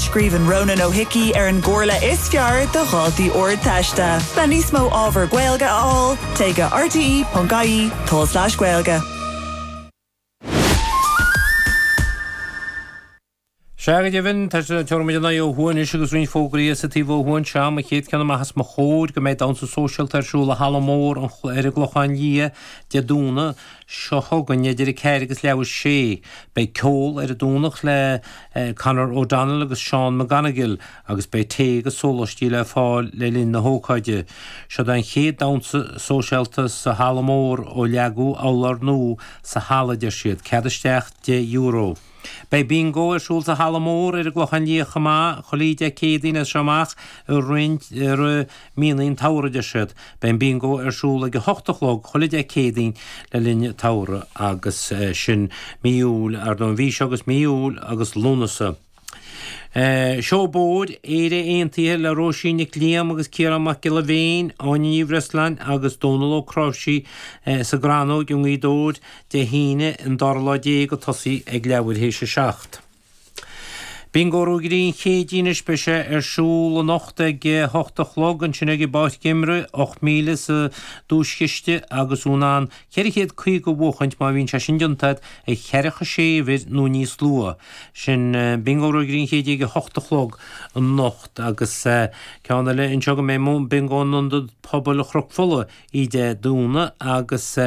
Scríobhann Ronan Ó hIcí ar an gcomhairle is fearr do dhaltaí Ardteiste le níos mó ábhar Gaeilge a fháil, téigh go rte.ie /gaeilge. Sea, go deimhin, tá, is tabharfaidh muid ár n-aghaidh ó thuaidh anois agus roinnt fógraí as an taobh ó thuaidh. Sea, an chéad cheann amach os mo chomhair go mbeidh damhsa sóisialta ar siúl i Halla Mór an Chla ar an gClochán Liath Dé Domhnaigh, seo chugainn idir a ceathair agus leathuair théis a sé. Beidh ceol ar an Domhnach le Conor O'Donnell agus Seán McGonigle agus beidh tae agus sólaistí le fáil le linn na hócáide. Seo'd an chéad damhsa sóisialta sa halla mór ó leagadh urlár nua sa halla deir siad. Cead isteach deich euro. Beidh Bingo ar siúl sa halla mór ar an gClochán Liath chomh maith, chuile Dé Céadaoin as seo amach i roinnt. míonna an tsamhraidh, a deir siad. Beidh an Bingo ar siúl ag a hocht a chlog chuile Dé Céadaoin le linn an tsamhraidh, agus sin mí Iúil, ar ndóigh, an mhí seo agus mí Iúil agus Lúnasa. Seó Bóird, Éire Aontaithe le Róisín Nic Liam agus Ciarán Mac Giolla Bhéin, Áine Ní Bhreisleáin agus Dónall Ó Cnáimhsí sa gCrannóig i nGaoth Dobhair, Dé hAoine, an dara lá déag ag tosaí ag leathuair théis a seacht. Bingo Ruagairí an Chéididh is beidh sé ar siúl anocht ag a hocht a chlog, ansin ag an bPáirc Geimhridh, ocht míle sa duaischiste agus tú in ann ceithre chéad caoga a bhuachaint má bhíonn sé sin deunta agat ag ceathracha sé uimhir nó níos luaithe. Sin Bingo Ruagairí an Chéididh ag a hocht a chlog anocht agus ceann eile anseo go mbeidh Bingo in Ionad Pobail Chnoc Fola oíche Dé Domhnaigh agus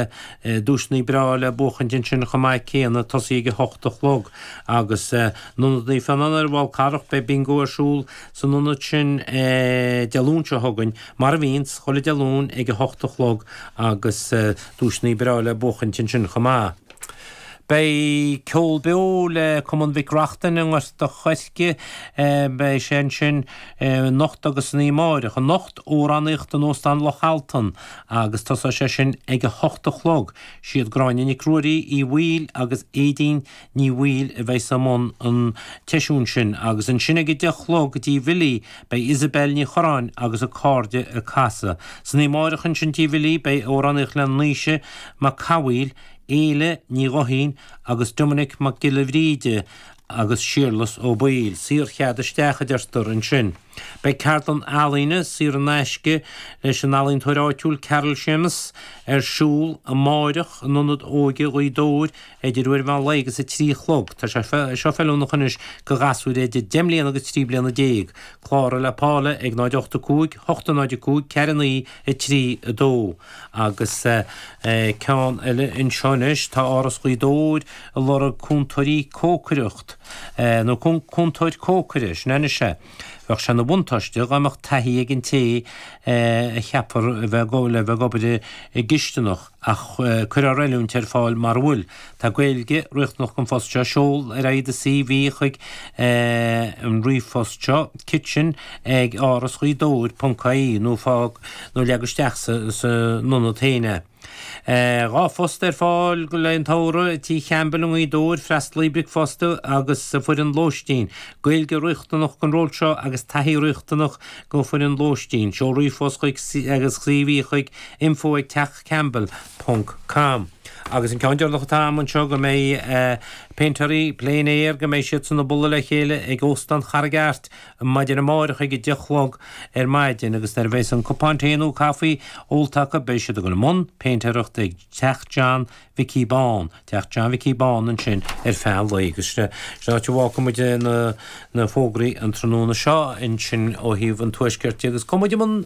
duaiseanna breá le buachaint ansin chomh maith céanna tosaí ag a hocht a chlog agus in Ionad Naomh Fionán ar an bhFál Carrach beidh Bingo ar siúl san ionad sin Dé Luain seo chugainn mar a bhíonns chuile Dé Luain ag a hocht a chlog agus duaiseanna breá le buachaint ansin chomh maith. Beidh ceol beo le Cumann Mhic Reachtain i nGort a Choirce. Beidh sé ansin anocht agus san oíche amárach. Anocht, amhránaíocht in Óstán Loch Altan agus tosóidh sé sin ag a hocht a chlog. Siad Gráinne Nic Ruairí, Uí Bhaoill agus Éadaoin Ní Bhaoill a bheidhs i mbun an tseisiúin sin agus ansin ag a deich a chlog tí Bhilí beidh Isabelle Ní Chuireáin agus a cairde ag casadh. San oíche amárach ansin tí Bhilí beidh amhránaíocht le Naoise Mac Cathmhaoil, Éile Ní Ghuithín agus Doiminic Mac Giolla Bhríde agus Séarlas Ó Baoill, saorchead isteach, a deirtear ansin. Beidh ceardlann ealaíne, saor in aisce, leis an ealaíontóir áitiúil Carol Shéamus, ar siúl amárach in Ionad Óige Ghaoth Dobhair idir uair an mheán lae agus a trí a chlog. Tá sé seo feiliúnach anois do ghasúir idir deich mbliana agus trí bliana déag. Cláraigh le Paula ag 0 8 5 8 0 5 4 9 3 2. Agus ceann eile anseo anois, tá Áras Ghaoth Dobhair a lorg cúntóirí cócaireacht, nó cúntóir cócaireachta, sin é. Bheadh sé ina bhuntáiste dá mbeadh taithí ag an té a cheapfar le bheith ag obair i gcisteanach, ach cuirfear oiliúint ar fáil mura bhfuil. Tá Gaeilge riachtanach don phost seo. Seol ar aghaidh do CV chuig an ríomhphost seo, kitchen ag Áras Ghaoth Dobhair ponc ie, nó fág nó leag isteach san ionad féin é. Dhá phost ar fáil le don tsamhradh, i Tigh Champbell i nGaoth Dobhair, freastalaí bricfeasta agus foireann lóistín. Gaeilge riachtanach don ról seo agus taithí riachtanach don fhoireann lóistín. Seol ríomhphost chuig agus CV chuig, info ag teach campbell ponc com. Agus an ceann deireanach atá a'm anseo go mbeidh péintéirí plein air, go mbeidh siadsan a' bualadh le chéile ag Óstán Charraig Airt maidin amáireach ag a deich 'chlog ar maidin agus nuair a bheas an cupán tae nó caife ólta acu beidh siad a' gabhail i mbun péintéireachta ag Teach John Mhicí Bán, Teach John Mhicí Bán ansin ar feadh an lae agus sin an áit a bhfágfaidh muid na fógraí an tráthnóna seo ansin ó thaobh an Tuaiscirt de agus cumhnímid an.